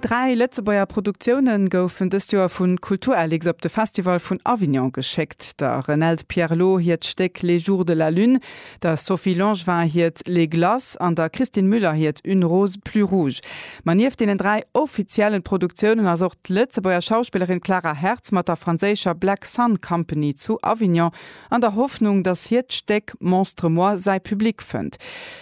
Dräi Lëtzebuerger Produktioune goufen dëst Joer vu Kulturlix op de Festival vun Avignon geschéckt, der Renelde Pierlot hiert Stéck Les jours de la lune, der Sophie Langevin hiert Les glaces an der Christine Müller hiert Une rose plus rouge. Ma nieft deenen dräi offiziellen Produktiounen ass och d'Lëtzebuerger Schauspillerin Clara Hertz mat der franséischer Black Sun Company zu Avignon an der Hoffnung, datt hiert d'Stéck Monstre moi säi Public fënnt.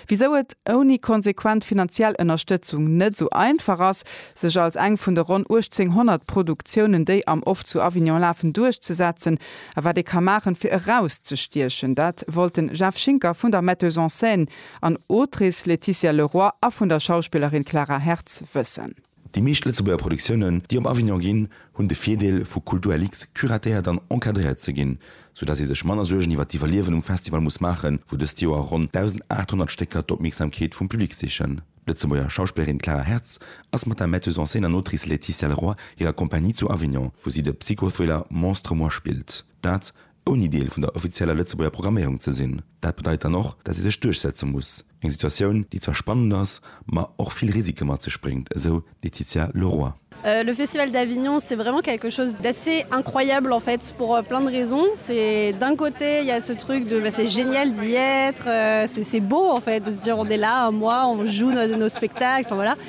Wisou et ouni konsequent finanziell Ënnerstëtzung net esou einfach ass, sech als eng vun de ronn 1800 Produktiounen, déi am Off zu Avignon lafen, duerchzesetzen, a wat ee ka maachen, fir erauszestiechen, dat wollt den Jeff Schinker vun der Metteuse en scène an Autrice Laetitia Leroy a vun der Schauspillerin Clara Hertz wëssen. Déi meescht Lëtzebuerger Produktiounen, déi op Avignon ginn, hunn de Virdeel, vu Kulturlux curatéiert an encadréiert ze ginn, sou dass ee sech manner Suergen iwwer d'Iwwerliewen um Festival muss maachen, wou dëst Joer ronn 1.800 Stécker d'Opmierksamkeet vum Public sichen. D'Lëtzebuerger Schauspillerin Clara Hertz ass mat der Metteuse en scène an Autrice Laetitia Leroy hirer Compagnie zu Avignon, wou si de Psychothriller Monstre moi spillt. Dat ouni Deel vun der offizieller Lëtzebuerger Programméierung ze sinn. Dat bedeit dann och, datt ee sech duerchsetze muss. Eng Situatioun, déi zwar spannend ass, ma och vill Risike mat sech bréngt, esou d'Laetitia Leroy. Le Festival d'Avignon c'est vraiment quelque chose d'assez incroyable en fait pour plein de raisons c'est d'un côté il ya ce truc de c'est génial d'y être c'est c'est beau en fait de se dire on est là un mois on joue nos spectacles enfin voilà.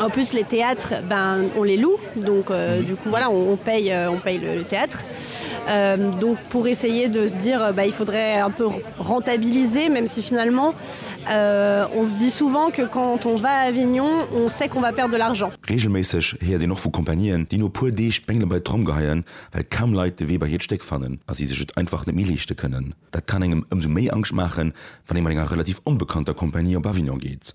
En plus les théâtres ben on les loue donc du coup voilà on paye on paye le théâtre euh, donc pour essayer de se dire ben il faudrait un peu rentabiliser même si finalement euh, on se dit souvent que quand on va à Avignon on sait qu'on va perdre de l'argent. Reegelméisseg héiert een och vu Compagnieen, déi no puer Deeg d'Bengele bei d'Tromm geheien, well kaum Leit de Wee bei hiert Stéck fannen a si sech et einfach net méi leeschte kënnen. Dat kann engem ëmsou méi Angscht maachen, wann ee mat enger relativ onbekannter Compagnie op Avignon geet.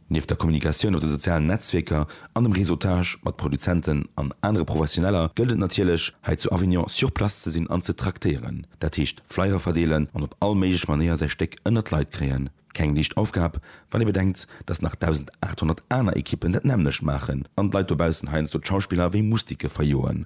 Nieft der Kommunikatioun op de sozialen Netzwierker an dem Réseautage mat Produzenten an anere Professioneller gëllt et natierlech, hei zu Avignon sur place ze sinn an ze traktéieren. Dat heescht Flyer verdeelen an op all méiglech Manéier säi Stéck ënnert d'Leit kréien. Keng liicht Aufgab, wann ee bedenkt, datt nach 1.800 aner Ekippen dat nämmlecht maachen an d'Leit dobaussen heiansdo d'Schauspiller wéi Mustike verjoen.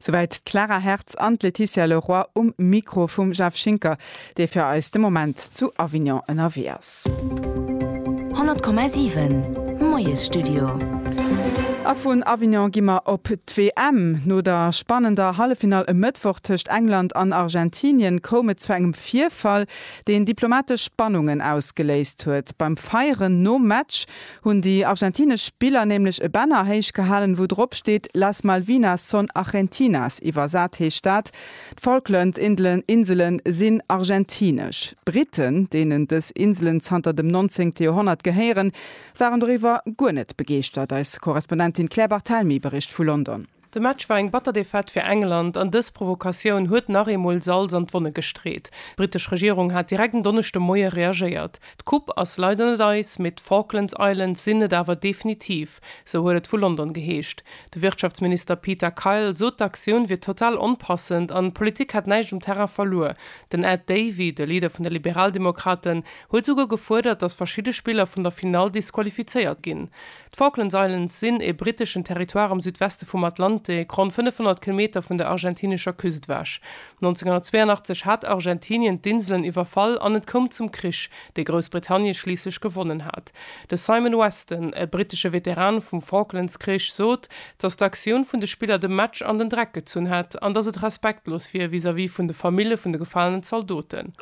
Souwäit d'Clara Hertz an d'Laetitia Le Roy um Mikro vum Jeff Schinker, dee fir eis de Moment zu Avignon ënnerwee ass. 100,7 Moiesstudio. A vun Avignon gi mer op d'WM. No der spannender Halleffinall e Mëttwoch tëscht England an Argentinien koum et zu engem Virfall, deen diplomatesch Spannungen ausgeléist huet. Beim Feieren nom Match hunn déi argentinesch Spiller nämlech e Banner héich gehalen, wou drop steet Las Malvinas son argentinas, iwwersat heescht dat, D'Falkland Insele sinn argentinesch. D'Briten, deenen dës Inselen zanter dem nonzéngte Joerhonnert gehéieren, waren doriwwer guer net begeeschtert. Eis Korrespondentin Claire Barthelmy bericht vu London. De Match war eng batter Defaite fir England an dës Provokatioun huet nach eemol Salz an d'Wonne gestreet. D'brittesch Regierung hat direkt en Donneschde Moie reagéiert. D'Coupe ass leider net eis, mee d'Falklands Islands sinn et awer definitiv, sou huet et vu London geheescht. De Wirtschaftsminister Peter Kyle sot d'Aktioun wier total onpassend an d'Politik hätt näischt um Terrain verluer. Den Ed Davey, de Leader vun de Liberaldemokraten, huet souguer gefuerdert, datt verschidde Spiller vun der Finall disqualifizéiert ginn. D'Falklands Islands sinn e britteschen Territoire am Südweste vum Atlantik, ronn 500 Kilometer vun der argentinescher Küst ewech. 1982 hat Argentinien d'Inselen iwwerfall an et koum zum Krich, dee Groussbritannie schliisslech gewonnen hat. De Simon Weston, e brittesche Veteran vum Falklandskrich, sot, dass d'Aktioun vun de Spiller de Match an den Dreck gezunn hätt an dass et respektlos wier vis-à-vis vun de Famille vun de gefalenen Zaldoten.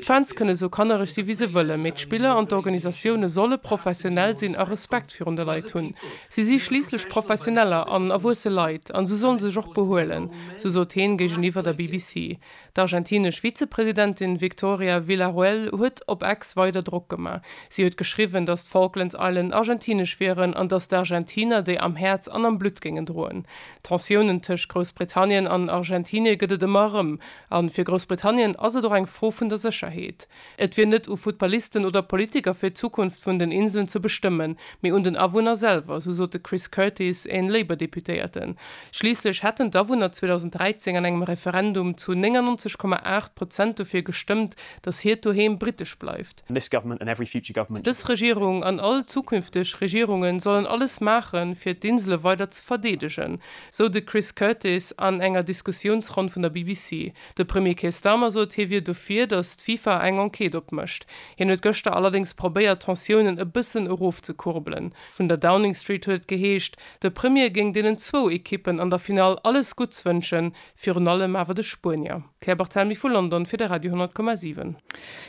D'Fans kënne sou kannereg si wéi se wëllen, mee d'Spiller an d'Organisatioune solle professionell sinn a Respekt virun de Leit hunn. Si si schliisslech Professioneller an erwuesse Leit an sou solle sech och behuelen, sou sot heen géigeniwwer der BBC. D'argentinesch Vizepresidentin Victoria Villarroel huet op Ex weider Drock gemaach. Si huet geschriwwen, datt d'Falklands Island argentinesch wieren an datt d'Argentiner déi am Häerz an am Blutt géingen droen. Tensiounen tëscht Groussbritannien an Argentinie gëtt et ëmmer erëm. A fir Groussbritannien ass et och eng Fro vun der Sécherheet. Et wier net u Futtballisten oder Politiker fir d'Zukunft vun den Inseln ze bestëmmen, mee un den Awunner selwer, esou sot de Chris Curtis, een Labour-Deputéierten. Schliisslech hätten d'Awunner 2013 an engem Referendum zu 99, 8 Prozent dofir gestëmmt, datt hiert Doheem britesch bleift. Dës Regierung an all zukünfteg Regierungen sollen alles maachen, fir d'Insele weider ze verdeedegen, esou de Chris Curtis an enger Diskussiounsronn vun der BBC. De Premier Keir Starmer sot, hie wier dofir, datt d'FIFA eng Enquête opmécht. Hien huet gëschter allerdéngs probéiert, d'Tensiounen e bëssen erofzekurbelen. Vun der Downing Street huet et geheescht, de Premier géing deenen zwou Ekippen an der Finall alles Gutts wënschen, virun allem awer de Spuenier. D'Claire Barthelmy vu London fir de Radio 10,7.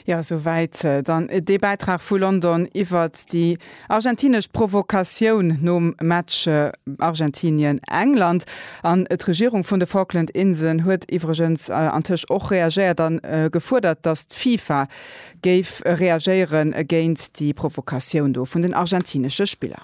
Jo, esou wäit dann dee Bäitrag vu London iwwert déi Argentinesch Provokatioun nom Match Argentinien-England. An d'Regierung vun de Falkland Inselen huet iwwregens antëscht och reagéiert a gefuerdert, datt d'FIFA géif reagéiere géint déi Provokatioun do vun den argentinesche Spiller.